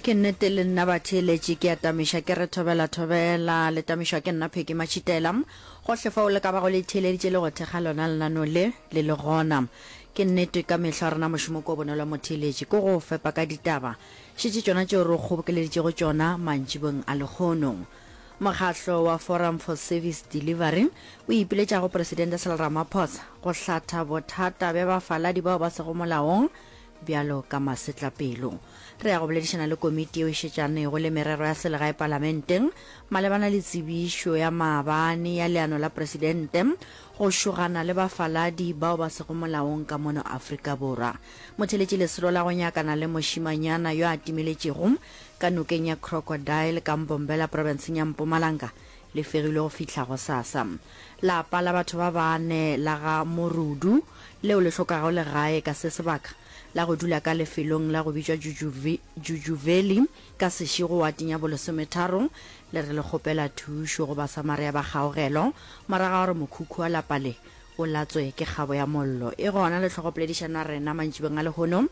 Ke nnete le nna batheeletši ke a tamiša ke re thobela thobela, le tamišwa ke nna Peggy Matšhitela. Gohle fao le ka bago le itheeleditše le go thekga lona lenaneo le, le le gona. Ke nnete ka mehla rena mošomo kua bonolo wa motheeletši ke go o fepa ka ditaba, šetše tšona tšeo re o kgobokeleditšego tšona mantšibong a lekgono. Mokgahlo wa Forum for Service Delivery o ipiletša go Presidente Cyril Ramaphosa go hlatha bothata bja bafaladi bao ba sego molaong bjalo ka masetlapelo. Re ya go boledišana le komiti yeo e šetšanego le merero ya selegae palamenteng malebana le tsebišo ya maabane ya leano la presidente go šogana le bafaladi bao ba sego molaong ka mono Afrika Borwa. Motheletši lesolo la go nyakana le mošimanyana yo a timeletšego ka nokeng ya Crocodile ka Mbombela provinceng ya Mpumalanga Le fegilwe go fihla gosasa. Lapa la batho ba bane la ga Morudu, leo le hlokago legae ka se sebaka, la go dula ka lefelong la go bitšwa Jujuvi, Jujuveli, ka sešego wateng ya bolesometharo, le re le kgopela thušo go Basamaria ba kgaogelo, morago ga gore mokhukhu wa lapa le o latswe ke kgabo ya mollo. E gona le hlogo poledišana rena mantšibeng a lehono.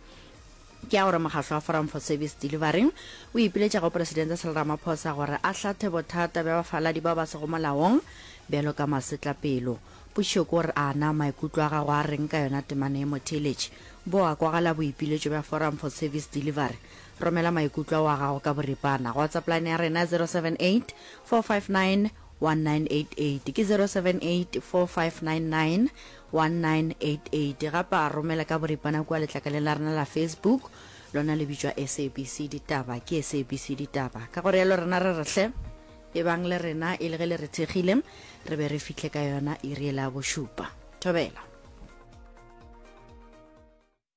Ke ya gore mokgatlo wa Forum for Service Delivery o ipiletša go Presidente Cyril Ramaphosa gore a hlathe bothata bja bafaladi bao ba sego molaong bjalo ka masetlapelo. Potšišo ke gore a na maikutlo a gago a reng ka yona temana ye? Motheeletši, bo a kwagala boipiletšo bja Forum for Service Delivery? Romela maikutlo ao a gago ka boripana go WhatsApp line ya rena 078 459 1988 ke 0784599198 gapa romela ka boripana kua letlakaleng la rena la facebook lona le bitšwa sabc ditaba ke sabc ditaba ka gore yalo rena re rehle e bang le rena e le ge le re thekgile re be re fihle ka yona iri e la bošupa thobela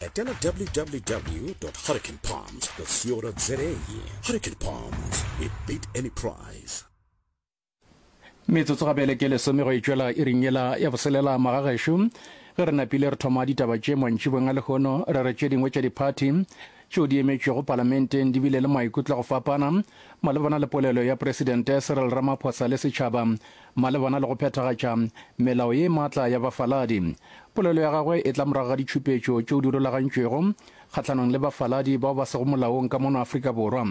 etela www hurricanepalms co za hurricane palms we beat any price metsotso ga bjale ke lesome go e tšwela e ring yela ya boselela magagešo ge re napile re thoma ditaba tše mantšibong a lehono re re tše dingwe tša diphathi tšeo di emetšwego palamenteng di bile le maikutlo go fapana malebana le polelo ya presidente cyril ramaphosa le setšhaba Malebana le go phethagatša melao ye matla ya bafaladi, polelo ya gagwe e tla morago ga ditšhupetšo tšeo di rulagantšwego kgahlanong le bafaladi bao ba sego molaong ka mono Afrika Borwa.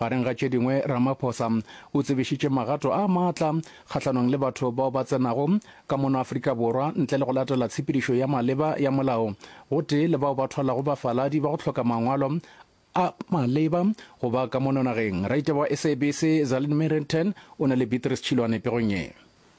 Gareng ga tše dingwe, Ramaphosa o tsebišitše magato a matla kgahlanong le batho bao ba tsenago ka mono Afrika Borwa ntle le go latela tshepedišo ya maleba ya molao gotee le bao ba thwalago bafaladi ba go hloka mangwalo a a maleba go ba ka mono nageng. Raite wa SABC, Zalin Merenten, o na le Beatrice Chilwane pegong ye.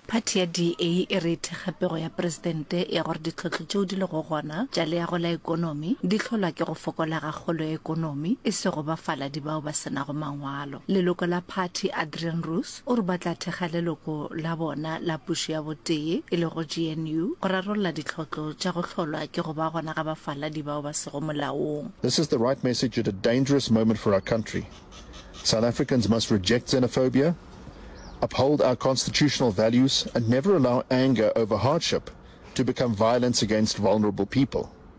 Phathi ya DA e re e thekga pego ya Presidente ya gore ditlhohlo tšeo di lego gona tša leago la ekonomi di hlolwa ke go fokola ga kgolo ya ekonomi, e sego bafaladi bao ba se nago mangwalo. Leloko la phathi, Adrian Roos, O re ba tla thekga leloko la bona la pušo ya botee, e lego GNU, go rarolla ditlhotlo tša go hlolwa ke go ba gona ga bafaladi bao ba sego molaong. This is the right message at a dangerous moment for our country. South Africans must reject xenophobia, uphold our constitutional values and never allow anger over hardship to become violence against vulnerable people.